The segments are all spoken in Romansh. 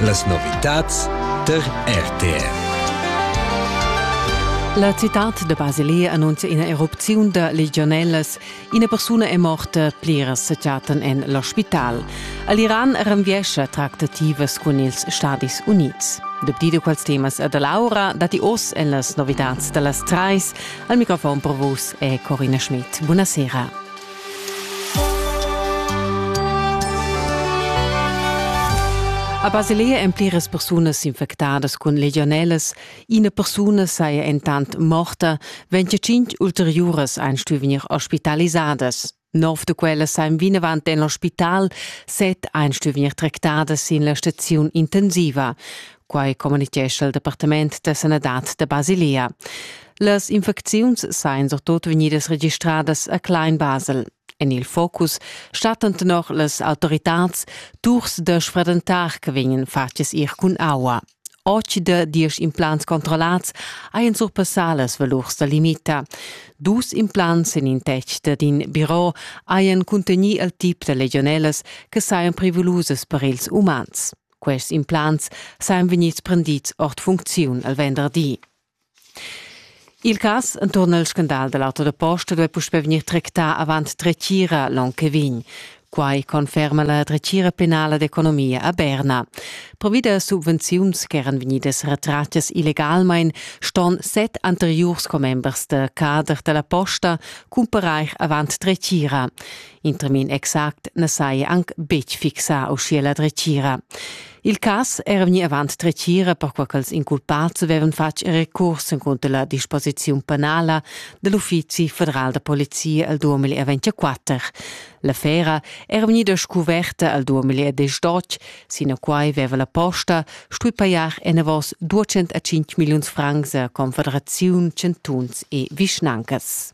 Las novitads tar RTR. La citad de Basilea annuncia ina erupziun da legionellas. Ina persuna è morta, pliras se chatten en l'ospital. All'Iran renviescha tractativas cun ils Stadis Unids. Dapti di quals temas da Laura dati oss en las novitads da las trais. Al microfon per vus è Corina Schmidt. Buonasera. A Basilea èn pliras persunas s'infectadas cun legionelas. Ina persuna saja entant morta, wenn tschintg ulteriuras ein stuì vegnir ospitalisadas. Nov da quelle sajan vinavant en l'ospital, set ein stuì vegnir tractadas sin la staziun intensiva. quai communitgescha il Departament da sanadad da Basilia. Las infecziuns sajan surtut vegnidas registradas a Klein-Basel. En il focus stattan tenor las autoritads turs da sfredentar che vegnan fatgs ir cun aua. Oggi da diesch implants controllats hajan surpassà las valurs da limita. Dus implants en in tec dad in biro hajan cuntegnì il tip da legionellas che sajan prevulusas per ils umans. Quests implants sajan vegnids prendids ord funcziun al venderdi. Il cas enturn al scandal da l'auto da posta duai puspè vegnir tractà avant dretgira l'onn che vegn. Quai conferma la dretgira penala d'economia a Berna. Provi da subvenziuns ch'eran vegnidas retratgas illegalmain ston set anteriurs commembers da cader da la posta cumparair avant dretgira. In termin exact na saja anc betg fixà uschia la dretgira. Il cas era vegnì avant dretgira perquai ch'els inculpads avevan fatg recurs encunter la disposiziun penala da l'Uffizi federal da polizia al 2024. L'affera era vegnida scuverta al 2018, sinaquai aveva la posta stui pajar enavos 205 milliuns francs a confederaziun, chantuns e vischnancas.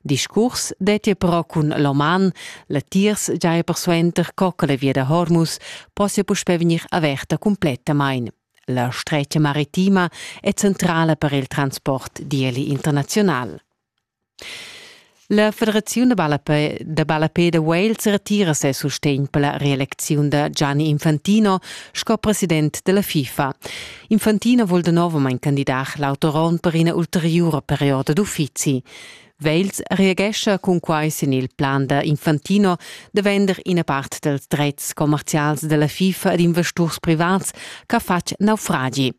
Discurs detti però cun l'oman, latiers giai persuenter co che la via da Hormus possia puspè vegnir averta cumplettamain. La stretga maritima è centrala per il transport, dieli internaziunal. La Federaziun da ballapè da, ballapè da Wales retira ses sustegn per la reelecziun da Gianni Infantino sco president della FIFA. Infantino vul de novamain candidar l'autoron per ina ulteriura perioda d'uffizi. Wales reagescha cunquai sin il plan da Infantino da vender ina part dals dretgs commerzials da la FIFA ad investurs privats ch'ha fatg naufragi.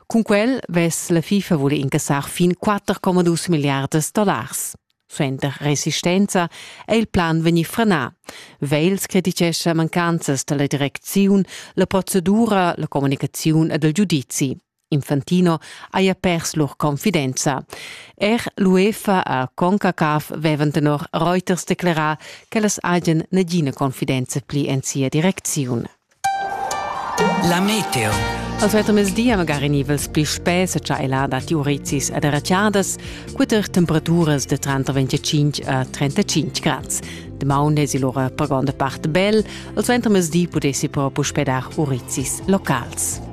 Cun quel vess la FIFA vole incassar fin 4,2 milliardas dollars. Suenter resistenza è il plan vegnì frenà. Wales crititgescha mancanzas da la direcziun, la procedura, la communicaziun ed il giudizi. Infantino haja pers lur confidenza. Er l'UEFA a CONCACAF vevan tenor Reuters declerà ch'ellas hajan nagina confidenza pli en sia direcziun. La meteo. Als mezzdi magari nivels pli spess cha ella dat urizis ed erratiadas, queter temperaturas de 35 a 35 grads. Demaun es il ora per gonda part bel, als ventermezdi pudessi però puspedar urizis locals.